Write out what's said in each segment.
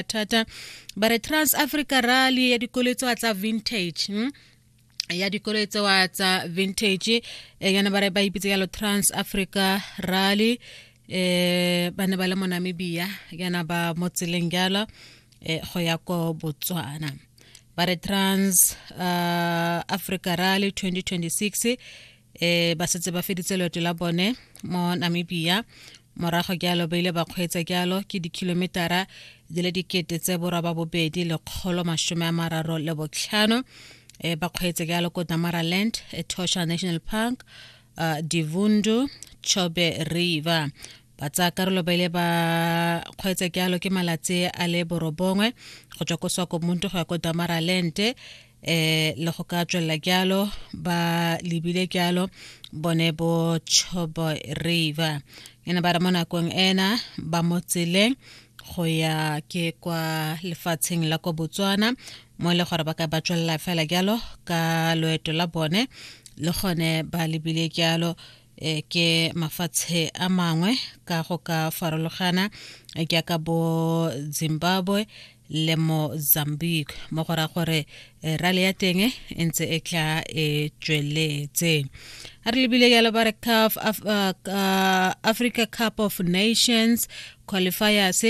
thata ba re trans africa rally ya dikolo tsa tsa vintage hmm? ya dikolo tsewa tsa vintage eh, yana ba re ba ipitse yalo trans africa rally eh ba ne ba le mo namibia yana ba mo tseleng jalo eh, go ya ko botswana ba re trans uh, africa rally 2026 e ba setse ba feditse loeto la bone mo namibia morago jalo ba ile ba kgweetsa jalo ke dikhilometara di le dikete tse boroba bobedi lekgolo masome a mararo le botlhano e ba kgweetsa jalo ko damaraland etosha national park uh, divundu chobe river ba tsaya karolo ba ile ba kgweetsa jalo ke malatsi a le borobongwe go tswa ko swakomuntu go ya ko damaralente eh le go ka tswelela jalo ba lebile jalo bone bo chobo river e ne ba re mo nakong ena ba mo tseleng go ya ke kwa lefatsheng la kwa botswana mo e le gore ba ka ba tswelela fela jalo ka loeto la bone le gone ba lebile jalo e ke mafatshe a mangwe ka go ka farologana e ke ka bo Zimbabwe le Mozambique mo go ra gore e, rale ya teng e ntse e tla e tsweletse a re lebile ya lebare CAF Af, uh, Africa Cup of Nations qualifiers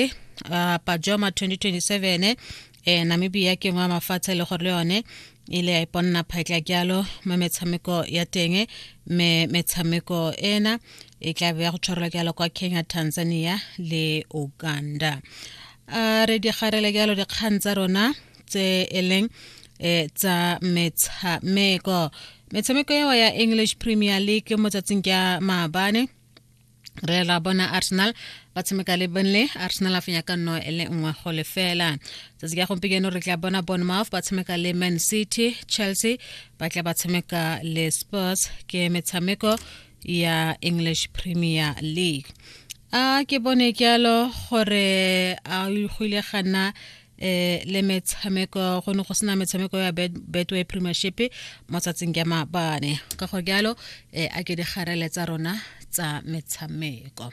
uh, Pajoma 2027 e namibia ke ngwe wa mafatshe le gore le yone e le ya iponna phatla jalo mo metshameko ya teng me metshameko ena e tla be ya go tshwarelwa jalo kwa kenya tanzania le uganda a re digarele jalo dikgang tsa rona tse e leng e tsa metshameko metshameko eo ya english premier league mo tsatsing ka maabane re la bona arsenal ba tshameka le burnley arsenal a fenya ka nno e le nngwe go lefela tsatsi ka gompieno re tla bona bournemouth ba tshameka le man city chelsea ba tla ba tshameka le spurs ke metshameko ya english premier league a ke bone jalo gore a go ile gana eh le metshameko go ne go sena metshameko ya betway premiership mo tsatsing ya mabane ka go jalo eh, a ke digarele tsa rona tsa metshameko